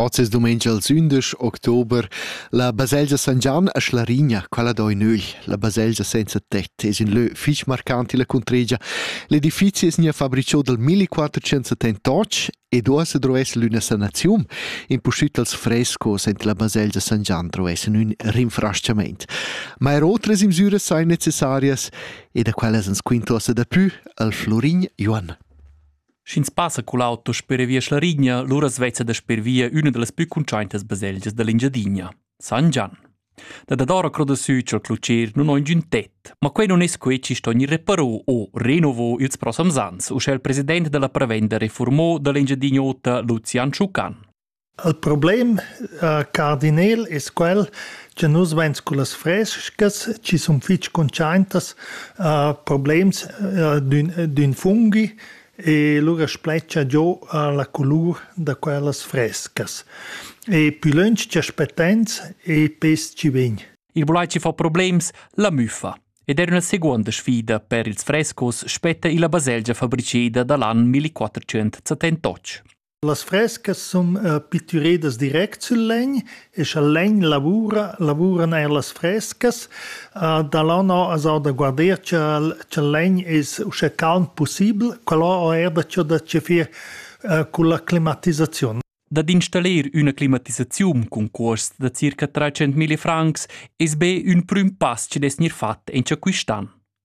Oz es dumengia ils ündesch october. La baselgia San Gian a Schlarigna, quella do in ögl. La baselgia senza tett es ün lö fich marcant illa cuntregia. L'edifizi es gnà fabrichò dal 1478 ed uossa drovess l'üna sanaziun. Impustüt dals frescos ent la baselgia San Gian drovessan ün rinfrachamaint. Ma er otras imsüras sain necessarias ed a quellas ans quintuossa dapü al Florin Joann. Sch'ins passa cul auto sper via Schlarigna, lura svezza da sper via üna da las plü cuntschaintas baselgias da l'Engiadina, San Gian. Da dadora cro da sü cha'l clucher nun ho ingün tet, ma quai nun es quai chi sto gnir reparo o renovo ils prossams ans, uschè il president da la prevenda reformò da l'Engiadin'Ota Lucian Schucan. Il problem, cardinel, es quel cha nus vain scu las fres-chas chi sun fich cuntschaintas a problems d'ün fungi e lura spletscha giò la culur da quellas fres-chas e pü lönch cha spettains e pes chi vegn. Il bulai chi fa problems, la müffa. Ed er üna seguonda sfida per ils frescos spetta illa baselgia fabriceda da l'an 1478. Las frescas sun pittüredas direct sül legn e scha il legn lavura, lavuran eir las frescas. Da là no as ho da guarder cha'l cha'l legn es uschè calm pussibel. Quellò ho eir dacieu da chefir culla climatisaziun. Dad installir üna climatisaziun cun cuosts da circa trais centmilli francs es be ün prüm pass chi'd es gnir fat in cha quist an.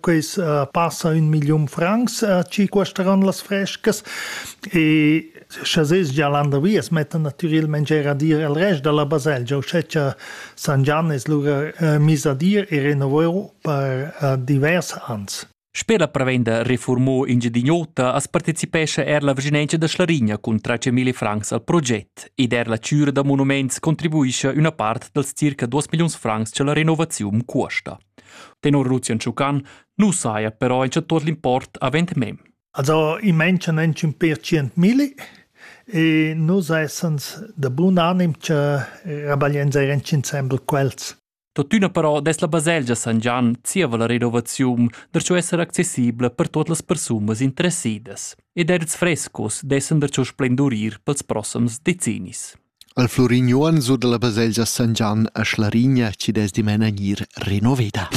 Quels uh, passa un million francs uh, ci cuesteran las frescas e sche ses gia landervi es metta natürelmente er a dir al rest della baselgia u sceccia San Gian es lura uh, mis a dir e renovero per uh, divers ans. Sper la prevenda Reformo Engiadin'Ota as partecipescha er la vicinanza da Schlarigna cun tra 100.000 francs al proget ed er la cura da monuments contribuisce una part dels circa 2 milions francs che la renovazione cuosta. Tenor Lucian Schucan nu saja però il sectur l'import avant mem. Also i manchan entschun per cient milli e nus essans da bun anim che rabagliens eir insembel quels. Tuttina però des la baselgia San Gian zieva la renovaziun der ciò esser accessibla per tot las persunas interessidas ed erts frescos dessen der ciò splendurir pels prossams decennis. El Flurignuon sur dalla baselgia San Gian a Schlarigna chi'd es dimena gnir renoveda.